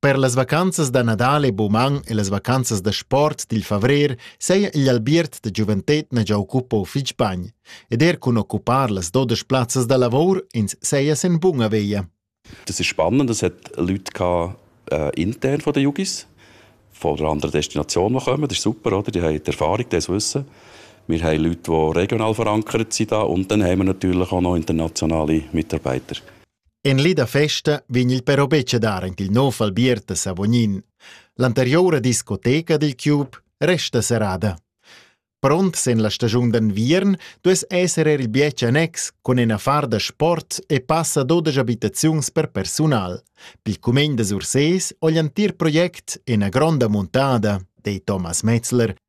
Per las vacanzas da Nadal e Buman e las vacanzas da sport dil favrer seia igl albiert da giuventetna gia occupau fitg bagn ed er cun occupar las dodas plazzas da lavor ins seia sen bunga veia. Das ist spannend, das hat Leute gehabt, äh, intern von den Jugis, von einer anderen Destination, die kommen. Das ist super, oder? Die haben die Erfahrung, das Wissen. Wir haben Leute, die regional verankert sind da und dann haben wir natürlich auch noch internationale Mitarbeiter. En li da festa vegn il però betg a dar en il nov albiert a Savognin. L'anteriura discoteca dil cube resta serrada. Pront sen la stagiun d'enviern duess esser er il bietg annex cun in affar da sport e passa dodesch abitaziuns per persunal. Pil cumegn da Sursés ho l'entir project ina gronda muntada, dei Thomas Metzler,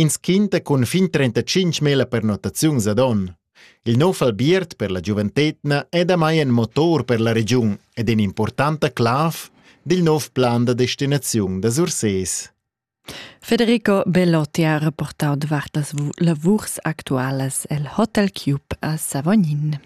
Ins quinta cun fin 35 mila pernottaziuns ad onn. Il nov albiert per la giuventetna è damai in motor per la regiun ed in'impurtanta clav dil nov plan da destinaziun da Sursés. Federico Bellotti ha reportau davart las lavurs actualas el Hotel Cube a Savognin.